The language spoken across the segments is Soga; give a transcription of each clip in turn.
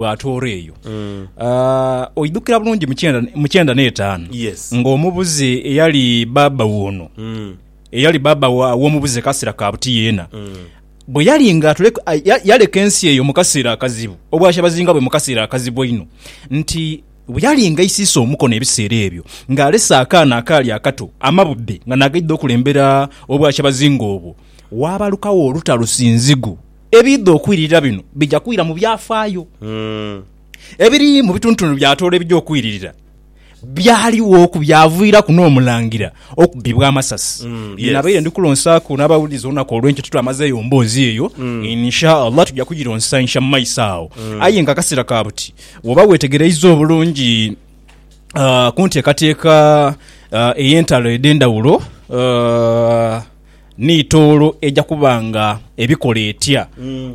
bwatoora eyo mm. uh, oidhukira bulungi mukyenda n'etaano yes. ng'omubuze eyali baaba woono mm. eyali baaba w'omubuze kasira ka buti yeena mm. bwe yali nga yaleka ensi eyo mu kaseera akazibu obwashabazinga bwe mu kaseera akazibu einho nti bwe yali nga isiisa omukono ebiseera ebyo ng'alese akaana akaali akato amabudde nga nagaidde okulembera obwashabazinga obwo waabalukawo olutalusi nzigu Ebiidha okwiririra bino bija kwira mu byafaayo. Ebiri mu bitundutundu bya Tooro ebija okwiririra byaligho ku byaviiraku n'omulangira okubbibwa amasasi. Bye nabaire ndi kulonsaaku n'abawulize olunaku olw'enkyo titwamazeeyo mboozi eyo. In Sha Allah tuja kugironsa insha mu maiso agho. Aye nga akasera ka buti bw'oba weetegereiza obulungi ku nteekateeka ey'entalo edh'endhawulo, Ni tooro eja kuba nga ebikola etya?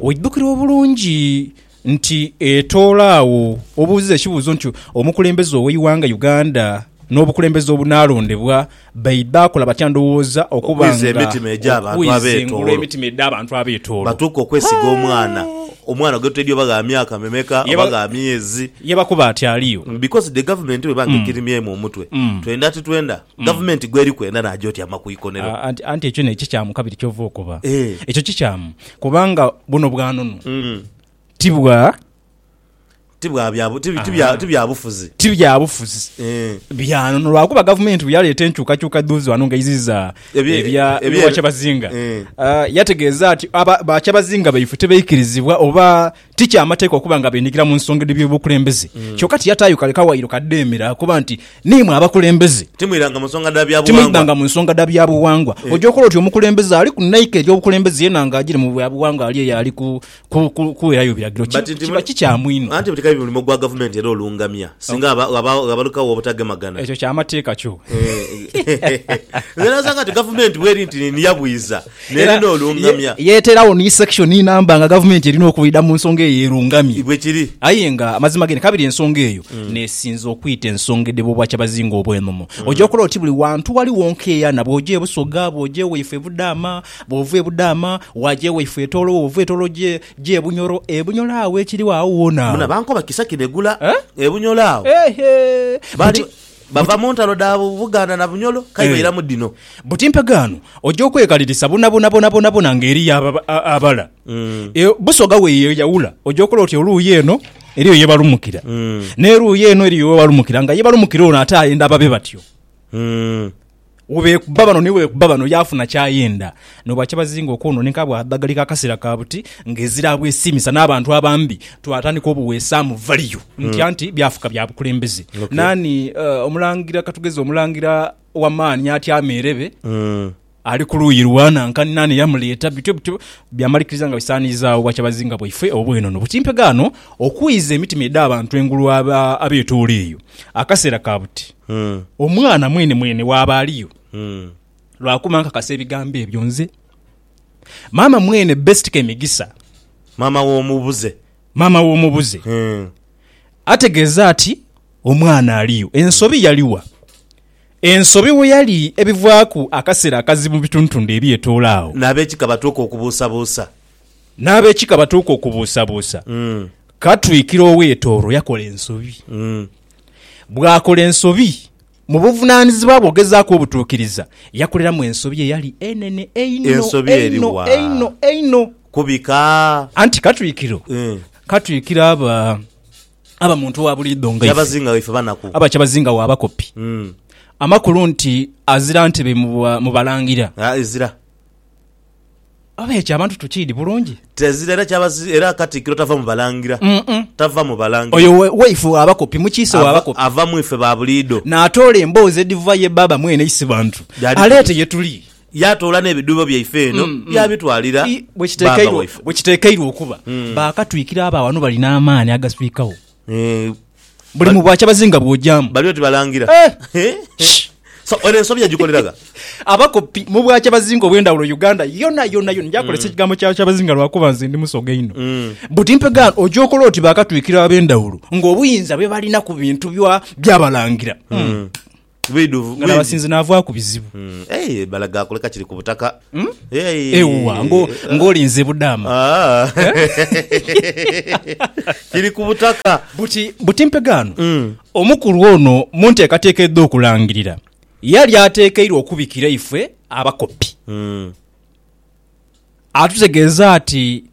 Oidhukira obulungi nti etooro agho obuuziza ekibuuzo nti omukulembeze ow'eighanga Uganda n'obukulembeze obunaalondebwa baidha kola batya ndowooza okuba nga okwiza emitima egy'abantu emitima edh'abantu ab'etooro batuuke okwesiga omwana omwana gwe toidhi oba gha myaka memeka oba gha myezi yabakuba ati aliyo. Because the government bweba nga ekirimyemu omutwe twenda titwenda. Gavumenti gweri kwenda naja oti ama ku ikonero. Anti ekyo nekyo kyamu kabiri kyova okoba ekyo kikyamu kubanga buno bwanunu ti bwa ti byabufuzi ti byabufuzi byanunu lwakuba gavumenti bweyaleeta enkyukakyuka dhuuzi wano nga eiziza ebya kyabazinga yategeeza nti bakyabazinga baife tebaikirizibwa oba Ti kya mateeka okuba nga beenhigira mu nsonga edh'eby'obukulembeze. Kyoka tiyataayo kale kawaayiro kadheemera okuba nti, Niimwe abakulembeze. Timwidhanga mu nsonga dha bya bughangwa. Timwidhanga mu nsonga dha bya bughangwa. Oja okola oti omukulembeze ali ku naika ery'obukulembeze yenha nga ajiire mu bya bughangwa ali eyo ali ku, ku, ku, kuweerayo biragiro. Ki, kiba kikyamu inho. Anti buli kabi mulimo gwa gavumenti era olungamya singa ghaba, ghaba, ghabalikawo obutagemagana. Ekyo kya mateeka kyo. Eeh. Nze n'asanga nti gavumenti bw'eri nti niya bwiza, Era n'olungamya. Ye, yeeteerawo ni section inamba nga gavumenti erina okwidha mu nsonga eyo erungamye. Bwe kiri. Aye nga amazima gene kabiri ensonga eyo n'esinze okwita ensonga edheba Obwakyabazinga obw'enono. Oja okola oti buli wantu ghaligho nkeeyana bw'oja e Busoga, bw'oja e waifo e Budaama, bw'ova e Budaama waaja e waifo e Tooro, bw'ova e Tooro oja e Bunyoro. E Bunyoro agho ekirigho agho woona Muna agho. bankoba Kisakye begula Eh? e Bunyoro agho. Eehee! Bali- Nti- Bava mu ntalo dha Buganda na Bunyolo kai bairamu dhino. Buti mpegaano oja okwekalirisa bwonabwonabwonabwona nga eriyo abala. Busoga bweyeyawula oja okola oti oluuyi eno eriyo ye balumukira, n'eruuyi eno eriyo we balumukira nga ye balumukira ono ate ayenda babe batyo. Webeekuba bano ni webeekuba bano yaafuna ky'ayenda. N'obwakyabazinga okwonooneka bwa dhagalika akaseera ka buti, ng'ezira abwesiimisa n'abantu abambi, twatandika obuweesaamu valiyu ntya nti byafuka bya bukulembeze. Naani omulangira, ka tugeze omulangira ow'amaani atya ameerebe, ali ku luuyi lwa nanka, ni naani eyamuleeta? Bityo bityo byamalikiriza nga bisaaniizaawo obwakyabazinga bwaifwe obw'enono. Bwe kimpegha ghano okwiiza emitima edh'abantu engulu abeetoola eyo akaseera ka buti. Omwana mwene mwene waaba aliyo lwa kuba nkakasa ebigambo ebyo nze. Maama mwene Best Kemigisa. Maama w'omubuze. Maama w'omubuze. Ategeeza ati omwana aliyo. Ensobi yali wa? Ensobi we yali ebivaaku akaseera akazibu mu bitundutundu ebyetoola agho. N'abekika batuuka okubuusabuusa. N'abekika batuuka okubuusabuusa. Katwikiro ow'e Tooro yakola ensobi. Bw'akola ensobi, mu buvunaanizibwa bwe okugezaaku obutuukiriza, yakoleramu ensobi eyali enene einho, Ensobi eri einho, wa? einho, einho. Ku bika? Anti katwikiro Eh. katwikira aba aba muntu owa buliidho nga ife, Kyabazinga waife banaku. aba kyabazinga w'abakopi. Mm. Amakulu nti azira ntebe mu ba- mu balangira. Ah, ezira. Oba ekyo abantu tukiidi bulungi? Tezira era kyaba si, era Katikkiro tava mu Balangira. Mm-mm. Tava mu Balangira. Oyo we, waife wa bakopi, mukiise wa Ava, bakopi. ava mu ife ba buliido. Naatoola emboozi edhiva ye Bbaabba mwene isi bantu, Yaadhituliza. aleete ye tuli. Yaatoola n'ebidhuubo byaife eno, Mm, mm. yaabitwalira I, bwe Bbaabba kitekeirwa, waife. bwe kitekeirwa okuba. Mm. Baakatwikira abo aghano bali n'amaani agaswikagho. Eh, Buli mu bwakyabazinga bw'ogyaamu. Bali oti balangira. So, eno ensobi yagikoleraga. Abakopi mu bwakyabazinga obw'endhawulo Uganda yona yona yona gyakozesa mm. ekigambo kya kyabazinga lwakuba nze ndi musoga inho. Mm. But mpegaano oja okola oti bakatwikira ab'endhawulo ng'obuyinza bwe balina ku bintu by'abalangira. Mm. Bwidhuvu nga nabasinze navaaku bizibu. Eeh balaga akuleka kiri ku butaka. Ewuwa ng'olinze budaama. Kiri ku butaka. Buti buti mpegaano omukulu ono mu nteekateeka edh'okulangirira yali ateekeirwe okubikira ifwe abakopi. atutegeeza ati,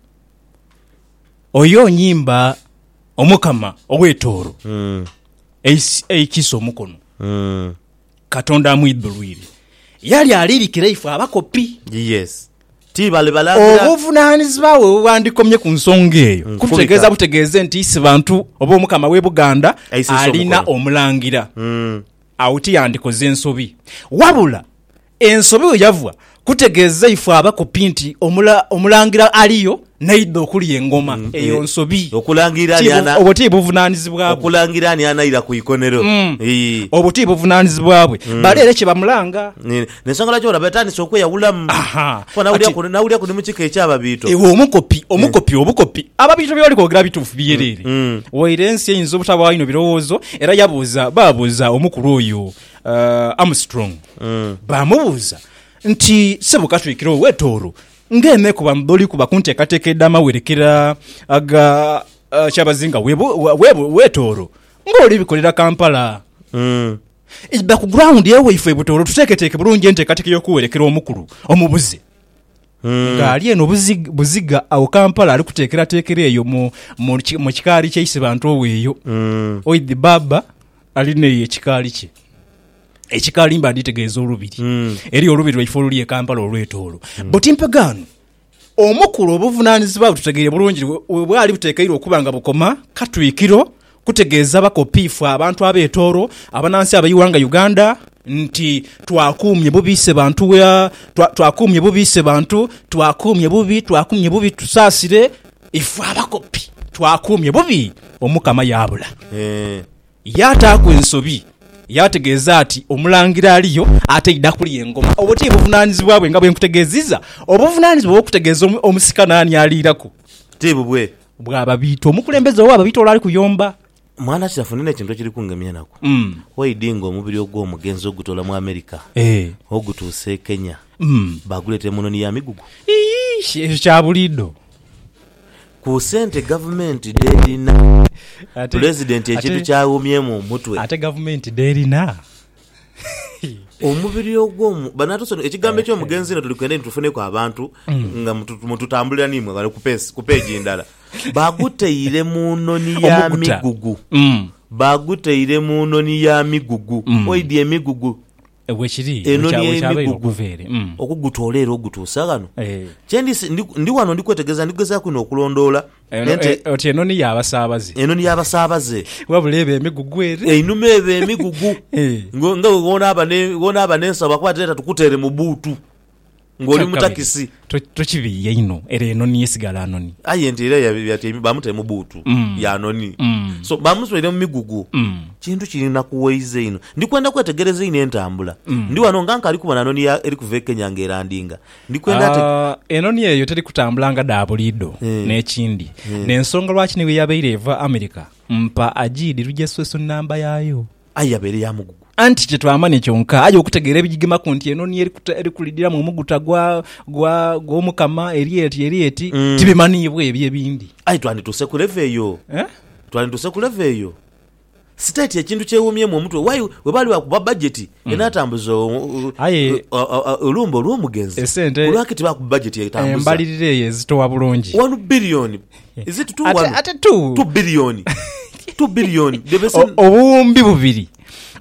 Oyo nyimba Omukama ow'etooro eikiisa omukono, Katonda amwidhulwire. Yali aliirikira ife abakopi. Yes. Ti bali balagira. Obuvunaanyizibwa bwe bwebwandikomye ku nsonga eyo, kubita. kututegeeza butegeeze nti isi bantu oba Omukama w'e Buganda Aisisa alina omukono. omulangira. Agho tiyandikoze nsobi. Wabula Ensobi we yava, kutegeeza ife abakopi nti Omulangira aliyo n'aidha okulya engoma. Eyo nsobi. Obwo ti buvunaanizibwa bwe. Obwo ti buvunaanizibwa bwe. Bali ere kye bamulanga. N'ensonga lwaki olaba atandise okweyawulamu. Nawuliraku ni mu kika eky'Ababiito. Iwe omukopi, omukopi, obukopi! Ababiito bye bali kwogera bituufu byereere? Waire ensi eyinza obutabaayo bino birowoozo. Era yabuuza, baabuuza omukulu oyo Armstrong baamubuuza nti, Ssebo Katwikiro ow'e Tooro, ng'eeme ku bamuli kuba ku nteekateeka edh'amawerekera aga ah, Kyabazinga w'e Bu- wa- w'e Bu- w'e Tooro ng'oli bikolera Kampala? Idha ku ground ewaifwe e Butooro tuteeketeeke bulungi enteekateeka y'okuwerekera omukulu omubuze. Ng'ali eno buzi- buziga awo Kampala ali kuteekerateekera eyo mu, mu, ki- mu kikaali kya Isebantu oweeyo. Oidhi bbaabba Ali n'eyo ekikaali kye. Ekikaali mba nditegeeza olubiri. Hmm. Eriyo olubiri lwaife oluli e Kampala olwetoolo. Hmm. But mpegaano, omukulu obuvunaanyizibwa bwe tutegeire bulungi we bwali butekeirwe okuba nga bukoma Katwikiro kutegeeza bakopiifu abantu ab'etoolo, abanansi ab'eighanga Uganda nti twakuumye bubi Ssebantu twakuumye bubi Ssebantu twakuumye bubi twakuumye bubi tusaasire Ife abakopi twakuumye bubi Omukama yaabula. Yaataaku ensobi, yaategeeza ati Omulangira aliyo ataidha kulya engoma. Obwo ti buvunaanizibwa bwe nga bwe nkutegeeziza? Obuvunaanizibwa obw'okutegeeza omusika naani aliiraku? Ti bubwe? Bw'ababiita, omukulembeze ow'ababiita ole ali kuyomba. Mwana kirafu nina ekintu ekiri kungemya enaku. Waidi nga omubiri ogw'omugenzi ogutoola mu America ogutuusa e Kenya baaguleeta emunoni ya migugu. Iish ekyo kya buliidho. Ku sente gavumenti dh'erina, Pulezidenti ekintu kyaghumyemu omutwe. Ate gavumenti dh'erina? Omubiri ogw'omu banatusono ekigambo eky'omugenzi ino tuli kwenda nitufuneku abantu mm. nga mututambulira nimwe ghale ku peegi ndala baguteire mu noni ya migugu mm. baguteire mu noni ya migugu mm. oidi emigugu enoni emigugu okugutoola era ogutuusa ghano eh. kyendi ndi wano ndi kwetegereza ndi kugezaku ino okulondoola Eno, Ente- e- oti enoni y'abasaabaze enoni y'abasaabaze wabula eba emigugu ere einuma eba emigugu Eh. Ngo- nga we wonaaba ne- wonaaba n'ensawo bakuba tireta tukutere mu buutu ng'oli mu Kyakabiri, takisi to- tokibiiya inho era enoni yesigala noni aye ente era ya- yatyaime bamutaire mu buutu Mm. yanoni Mm. so bamuswaire mu migugu Mm. kintu kirinakuwaiza inho ndikwenda kwetegereza inho entambula Mm. ndi wano nga nkali kubona noni ya- eri kuva e kenya nga erandinga Ndi kwenda ate. Ah, enhonhi eyo teri kutambula nga dha buliidho. N'ekindi, n'ensonga lwaki ni bwe yabaire eva Amerika, mpa ajiidhi lugya sweswi nnamba yaayo. Aye yabaire ya mugugu. Anti kye twamanya kyonka, aye okutegeera ebigigemaku nti enhonhi eri kuta, eri kulidhiramu omuguta gwa, gwa, gw'Omukama, eri eti, eri eti, tibimanhiibwa ebyo ebindi. Aye twandituuse ku leve eyo. Eh? Twandituuse ku leve eyo. Siteeti ekintu kyewuumyemu omutwe waire bwe baali baakuba bajeti enaatambuza Aye olumbe olw'omugenzi. esente Lwaki tibaakuba bajeti etambuza. embalirira eyo ezitowa bulungi. Wanu biliyoni, is it two? Ate, Wanu ate tu, tu biliyoni, tu biliyoni, the o- bese- obuwumbi bubiri.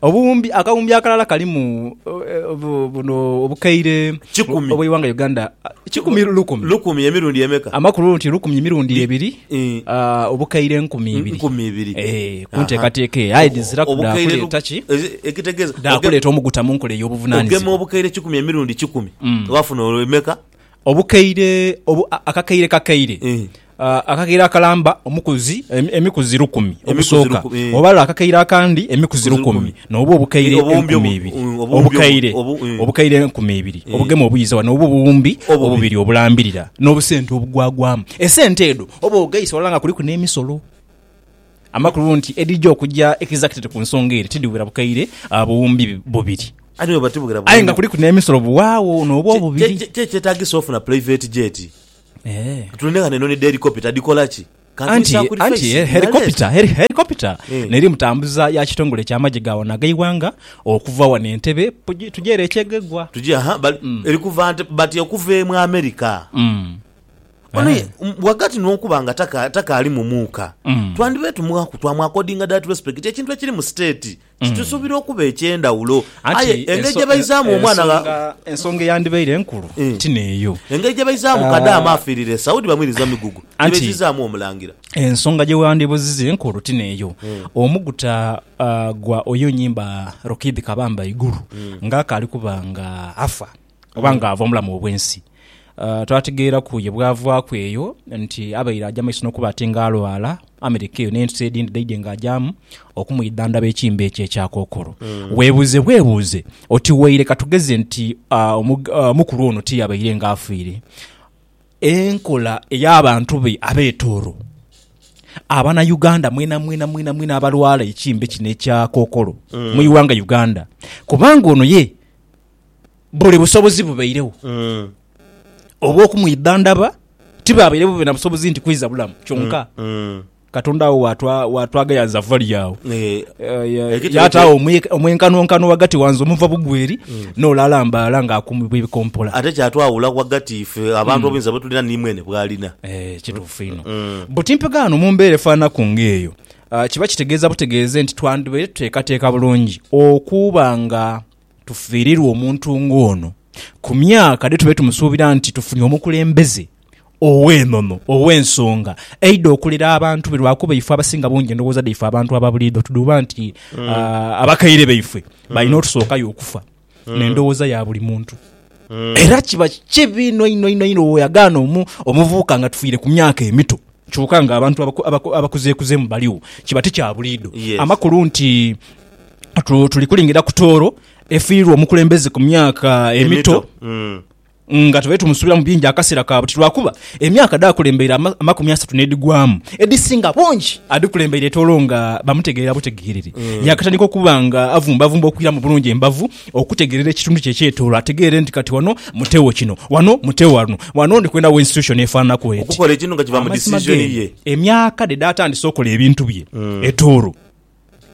Obuwumbi, akawumbi akalala kalimu eh, bu- buno obukaire Kikumi. obw'eighanga Uganda. Kikumi lukumi. lukumi emirundi emeka? Amakulu nti lukumi mirundi ebiri. Obukaire enkumi ibiri. Enkumi ibiri. Ee, ku nteekateeka eyo. Aye dhiziraku dhaakuleeta ki? Ekitegeeza. Dhaakuleeta omuguta mu nkola ey'obuvunaanyizibwa. Ogema obukaire kikumi emirundi kikumi, waafuna olwo emeka? Obukaire, akakaire kakaire. Akakaire akalamba, omukuzi, emikuzi lukumi ogusooka. Obala akakaire akandi, emikuzi lukumi. N'obwo obukaire enkumi ibiri obukaire, obukaire enkumi ibiri obugema obwiizawa, n'obwo obuwumbi obubiri obulambirira, n'obusente obugwagwamu. Esente edho oba ogheisa walala nga kuliku n'emisolo. Amakulu nti edhija okuja exactly ku nsonga ere tidhiwera bukaire buwumbi bubiri. Aye nga kuliku n'emisolo buwaagho n'obwo obubiri. Kiki ekyetaagisa ofuna private jet? Tulinde ghano enhonhi dhelikopita dhikola ki? Anti, anti e, helikopita, heli, helikopita n'eri mutambuza ya kitongole ky'amagye ga wano ag'eighanga, okuva wano Entebbe, pugi, tugye ere ekyegegwa. Tugye, aha, bali, eri kuva Nte, bati okuva emu Amerika. Ono ye, ghagati n'okuba nga taka, takaali mu muuka, twandibaire tumughaku, twamwakodinga that respect, ekintu ekiri mu state. Kitusubira okuba eky'endhawulo. Anti Aye engeri gye enso- baizaamu en- omwana gha- ensonga- ensonga eyandibaire enkulu Eh. ti n'eyo. Engeri gye baizaamu Ah. Kadaama afiirira e Saudi bamwiriza migugu. Gye Anti- baizizaamu Omulangira. ensonga gye wandibuziza enkulu ti n'eyo omuguta ah, gwa oyo nyimba rokid kabamba iguru ng'akaali kuba nga afa oba nga ava omulamu obwensi. Twategeeraku ye bwavaaku eyo nti abaire aja maiso nokuba ati nga alwala America eyo nensi edindi dhaidhe nga ajamu okumwidhandhaba ekimbe ekyo ekya kokolo. Webuuze bwebuuze oti waire katugeze nti omukulu ono tiyabaire nga afiire enkola eyabantu be abe Tooro, abana Uganda mwenamwena mwenamwena abalwala ekimbe kino ekya kokolo mwighanga Uganda kubanga ono ye. buli busobozi bubairegho obw'okumwidhandhaba, tibabairegho babe na busobozi nti kwiza bulamu. Kyonka Katonda agho waatwa- waatwagayanza vali agho Eh, Eh, Ekitebe yaatagho omwe- omwenkanonkano ghagati wanze omuva bugweri n'ole alambaala ng'akumibwa ebikompola. ate kyatwawula ghagati ife abantu obuyinza bwetulina ni mwene bwalina Eh, kituufu inho buti mpegaano mu mbeera efaanaku ng'eyo ah, kiba kitegeeza butegeeze nti twandibaire tuteekateeka bulungi okuba nga tufiirirwe omuntu ng'ono ku myaka dhe tube tumusuubira nti tufunye omukulembeze ow'enono, ow'ensonga aidha okulera abantu be lwakuba ife abasinga bungi endowooza dhaife abantu aba buliidho tudhuuba nti abakaire baifwe balina otusookayo okufa n'endowooza ya buli muntu. Era kiba kibi inho inho inho inho bw'oyagaana omuvubuka nga tufiire ku myaka emito. Kyoka nga abantu abakuzeekuzemu baligho, kiba ti kya buliidho. Amakulu nti tuli kulingira ku Tooro efiirwa omukulembeze ku myaka emito nga tubaire tumusuubiramu bingi akaseera ka buti lwakuba emyaka dh'akulembeire amakumi asatu n'edhigwamu edhisinga bungi adhikulembeire Tooro nga bamutegeera butegeerere. Yaakatandika okuba nga avumbavumba okwiramu bulungi embavu. Okutegeerera ekitundu kye ekyetoolwa, ategeere nti kati wano mute wo kino, wano mute wano, wano ndi kwenda wo institution efaananaku eti. Okukola ekintu nga kiva mu decision ye. Emyaka dhe dhaatandise okola ebintu bye etoolo,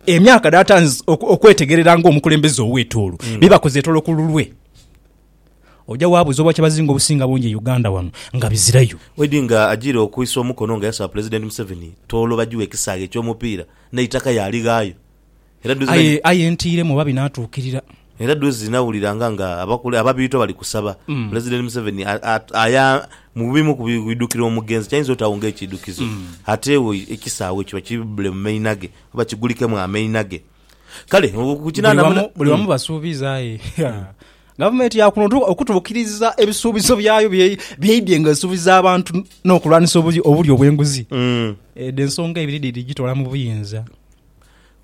emyaka dhaatandize okwetegerera nga omukulembeze ow'etoolo, bye bakoze etoolo ku lulwe, oja waabuuza obwakyabazinga obusinga bungi e Uganda wano nga bizirayo. Wade nga ajiire okwisa omukono nga yasaba Pulezidenti Museveni toolo bajiwe ekisaghe eky'omupiira n'eitaka yaalighaayo. Aye, aye ntiiremu oba binaatuukirira. Era dhozi nawuliranga nga abakule, ababiito bali kusaba Pulezidenti Museveni a, a, aya mu bimu ku bidukira omugenzi ky'ayinza otaagho ng'ekiidukizo ate ewo ekisaawe kiba kibbule mu maina ge oba kigulikemu amaina ge. Kale ku Buli kinaana wamu, buli wamu basuubiza, aye ha, Gavumenti ya kuno tu, okutuukiriza ebisuubizo byayo bye, bye idhye nga esuubiza abantu n'okulwanisa obulyo, obulyo bw'enguzi, edho ensonga ibiri dhidhi dhigitoola mu buyinza.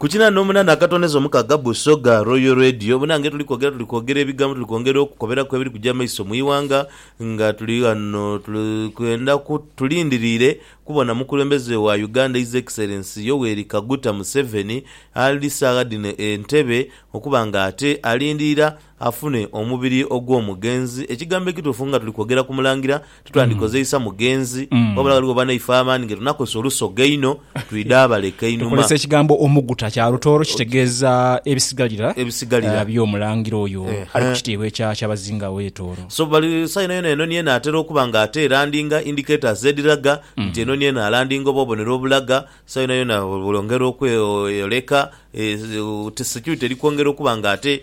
Ku kinana n'omunana akatoneza omukaga Busoga Royal Radio bona nga etuli kwogera tuli kwogera ebigambo tuli kwongera okukoberaku ebiri kuja maiso mu ighanga nga tuli ghano tuli kwenda ku tulindiriire kubona mukulembeze wa Uganda His Excellency Yoweri Kaguta Museveni ali saagha dhino e Ntebe okuba nga ate alindiira afune omubiri ogw'omugenzi. Ekigambo ekituufu nga tuli kwogera ku Mulangira titwandikozeisa mugenzi, wabula ghaligho banaife abandi nga tunakozesa olusoga einho twidha abaleka einhuma. Tukozesa ekigambo omuguta kya lutooro kitegeeza ebisigalira Ebisigalira. by'Omulangira oyo ali ku Ehe. kitiibwa ekya Kyabazinga owe Tooro. So bali saha yona yona enoni eno atera okuba nga ate erandinga, indicators, edhiraga nti enoni eno alandinga oba obonero obulaga saha yona yona bwongera okweyoleka, eh, security eri kwongera okuba nga ate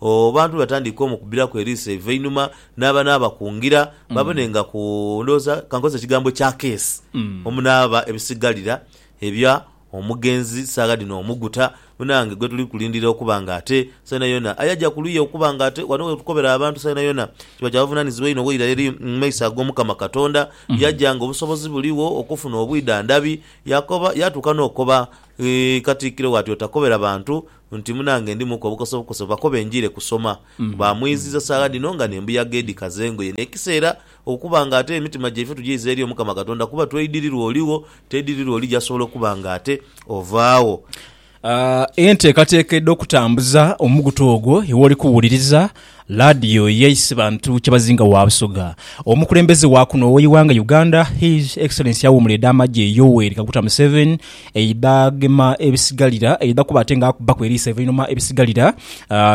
Obantu bwebatandika omukubiraku eriiso eivainhuma naaba n'abakungira babone nga ku, ndhowooza kankozese ekigambo ekya keesi, omunaaba ebisigalira ebya omugenzi saagha dhino omuguta, munange gwetuli kulindira okuba nga ate saa yonayona aye aja ku luya okuba nga ate wano wetukobera abantu saa yonayona. Kiba kya buvunaanyizibwa inho waira eri mu maiso ag'Omukama Katonda, yaja nga obusobozi buligho okufuna obwidhandhabi, yakoba, yatuuka n'okoba Katikkiro we ati, Otakobera bantu nti munange ndimuku obukoso bukoso bakobe njiire kusoma. Baamwiziiza saagha dhino nga n'embuyaga edhikaza engoye. N'ekiseera okuba nga ate emitima gyaife tugiiza eri Omukama Katonda kuba tweidirirwa oligho, tweidirirwa oli gy'asobola okuba nga ate ovaagho. Enteekateeka edh'okutambuza omugutu ogwo iwe oli kuwuliriza Ladio ye isi bantu kyebazinga wa Busoga. Omukulembeze wa kuno owe ighanga Uganda His Excellency Awumula eda Amagye Yoweri Kaguta Museveni eidha gema ebisigalira eidha kuba ate nga akubaku eriiso evainhuma ebisigalira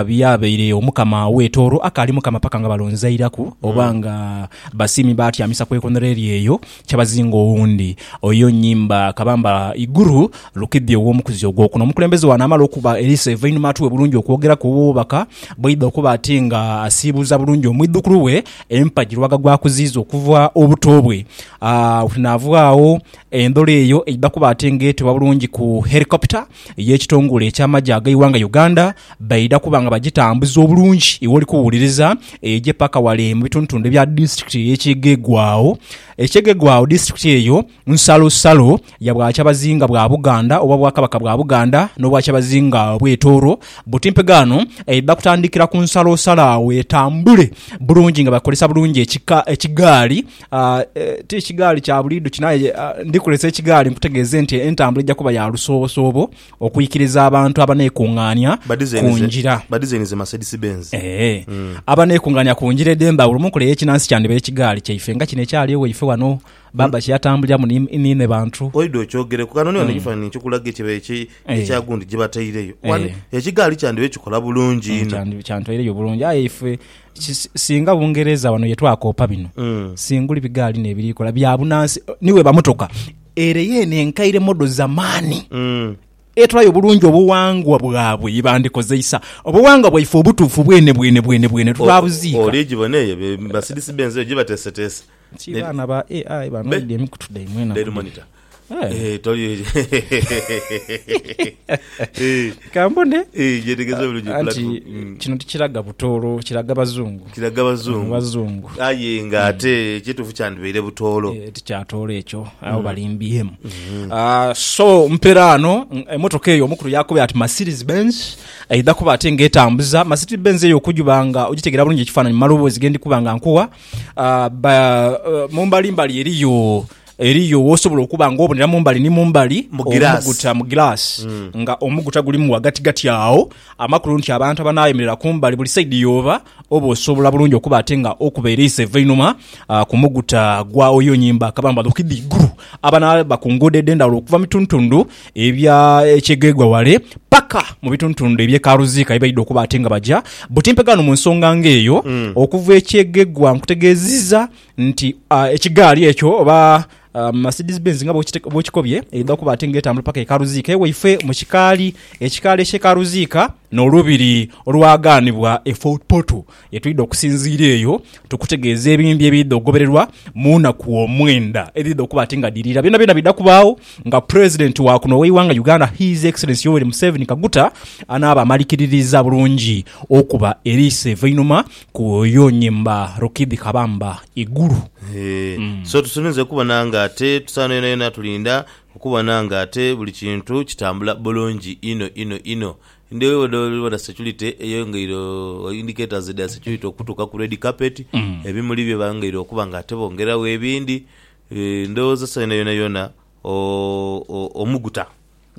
byabaire Omukama we Tooro akali Mukama paka nga balonzairaku oba nga basiimi baatyamisa ku ekonhero eri eyo Kyabazinga owundi oyo Nyimba Kabamba Iguru Lukidhi ow'omukuzi ogwokuna omukulembeze wano amala okuba eriiso evainhuma atuwe bulungi okwogeraku obubaka bwaidha okuba ati nga asiibuuza bulungi omwidhukulu we empagi lwaga gwakuziiza okuva obuto bwe aa. Naavugho agho endhola eyo eidha kuba ati nga etebwa bulungi ku Helicopter y'ekitongole eky'amagye ag'eighanga Uganda baidha kuba nga bagitambuza obulungi iwoli kuwuliriza eje paka wale mu bitundutundu ebya disitulikiti ey'e Kyegegwao. E Kyegegwao disitulikiti eyo nsalosalo ya Bwakyabazinga bwa Buganda oba Obwakabaka bwa Buganda n'Obwakyabazinga bw'e Tooro buti mpegaano eidha kutandikira ku nsalosalo agho etambule bulungi nga bakozesa bulungi ekigaali Ti kigaali kya buli idhuki, aye ndikulesa ekigaali nkutegeeze nti entambula eija kuba ya lusoobosoobo okwikiriza abantu abaneekung'aania ku ngira. Badizayinize Mercedes Benz. Ee. Abaneekung'aania ku ngira edh'endhawulo mu nkola ey'ekinansi kyandhiba ekigaali kyaife nga kino ekyali ewaife ghano baaba kye yatambuliramu ni niine bantu. Oidha okyogereku. Kano niwano ekifaananhi nkikulaga ekyo ekya gundi gye bataireyo. Wano ekigaali kyandhiba kikola bulungi inho. Kyandhitwaireyo bulungi aye ife Singa Bungereza wano yetwakoopa bino singuli bigaali nebirikola bya bunansi niwe bamutoka ere yeno enkaire modo zamani mm. etulayo bulungi obuwangwa bwabwe yebandikozeisa obuwangwa bwaife obutuufu bwene bwene bwene bwene twabuziika. Oligibona eyo Mercedes Benz eyo gyebateeseteese Ki baana ba AI banwedde emikutu dhaimwe enaku Daily dhino. Monitor. Eh. Eh, toli eyo. Eh, Kambone eh, gyetegeeza bulungi anti platform. Mm. kino tikiraga butoolo, kiraga bazungu. Kiraga bazungu. Bazungu. Aye nga ate ekituufu kyandibaire butoolo. Eh, tikyatoolo ekyo abo balimbyemu Ah, so mperaano mm, emotoka eyo omukulu yakubira ati mercedes benz eidha kuba ate nga etambuza mercedes benz eyo okujuba nga ogitegera bulungi ekifaananyi mu maloboozi gendi kuba nga nkuwa Mu mbali mbali eriyo eriyo wosobola okuba nga obonera mumbali ni mumbali mu omuguta mu glass mm. nga omuguta gulimu wagati gati awo amakulu nti abantu abanayemerera kumbali buli saidi yoba oba osobola bulungi okuba ate nga okuba eriisa eva einuma uh, ku muguta gwawo yonyimba akabamba lukidhi iguru abanaba ku nguudo edhendawulo okuva mituntundu ebya ekyegheegwa wale paka mu bitundutundu eby'e Karuziika ye baidha okuba ate nga baja butimpega ghano mu nsonga ng'eyo okuva ekyegheegwa. Nkutegeeziza nti ekigaali ekyo oba Mercedes Benz nga bw'okikobye eidha okuba ate nga etambula paka e Karuziika ewaifwe mu kikaali, ekikaali eky'e Karuziika. N'Olubiri olwagaanibwa e Fort Portal ye twidha okusinziira eyo tukutegeeze ebindi ebiidha okugobererwa mu naku omwenda edhiidha okuba ati nga dhirira. Byonabyona biidha kubaagho nga President wa kuno ow'eighanga Uganda His Excellency Yoweri Museveni Kaguta anaaba amalikiririiza bulungi okuba eriiso eva einhuma ku Oyo Nyimba Rukidhi Kabamba Iguru. Eeh so tusuubinze okubona nga ate tusaana yonayona tulinda Okubona nga ate buli kintu kitambula bulungi inho inho inho. Ndhi eyo bwedha bwedha security eyongeire o indicators dha security okutuuka ku red carpet, ebimuli bye bongeire okuba nga ate bongeragho ebindi. Ndhowooza esawa eno yonayona o o omuguta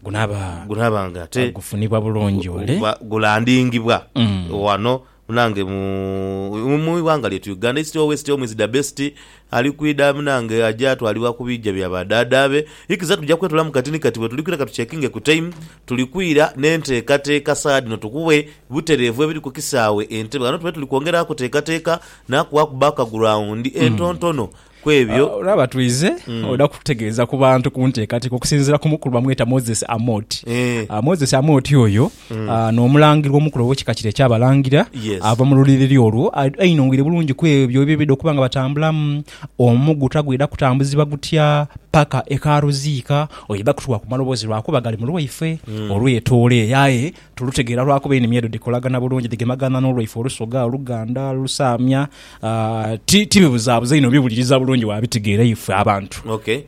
Gunaaba gunaba nga ate gufunibwa bulungi gu ole. guba gulandingibwa Mm. ghano Munange mu ighanga lyetu Uganda east or west home is da best ali kwidha munange aja twalibwa ku biija bya ba dhaadha be ikiza tuja kwetoola mu kati ni kati bwetuli kwidha katuchekinge ku time tuli kwidha ne nteekateeka saa dhino tukughe butereevu ebiri ku kisaawe e Ntebe ghano tube tuli kwongera kuteekateeka na kughaku background entontono ku ebyo. Olaba twidhe oda kututegeeza ku bantu ku nteekateeka okusinziira ku mukulu bamweta Moses Amoti. Eh. Ah, Moses Amoti oyo ah, n'omulangira omukulu ow'ekika kire eky'Abalangira Yes. ava mu luliriri olwo. Ah, Ainong'eire bulungi ku ebyo eby'oidha okuba nga batambulamu, omuguta gwidha kutambuzibwa gutya paka e Karuziika. Oidha kutuwa ku maloboozi lwakuba gali mu lwaife olw'etooleeyo aye Tulutegeera lwakuba enimi edho dhikolagana bulungi, dhigemagana n'olwaife Olusoga, Oluganda, Olusaamia. Ti, ti bibuzaabuza inho, obiwuliriza bulungi waabitegeera ife abantu. Ok.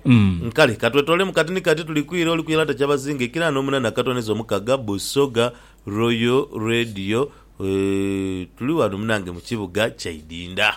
Kale ka twetoolemu kati ni kati. Tuli kwire oli ku Yalata Kyabazinga ekiraano omunaana akatone zo mukaga, Busoga Royal Radio. Tuli ghano munange mu kibuga Kyaidinda.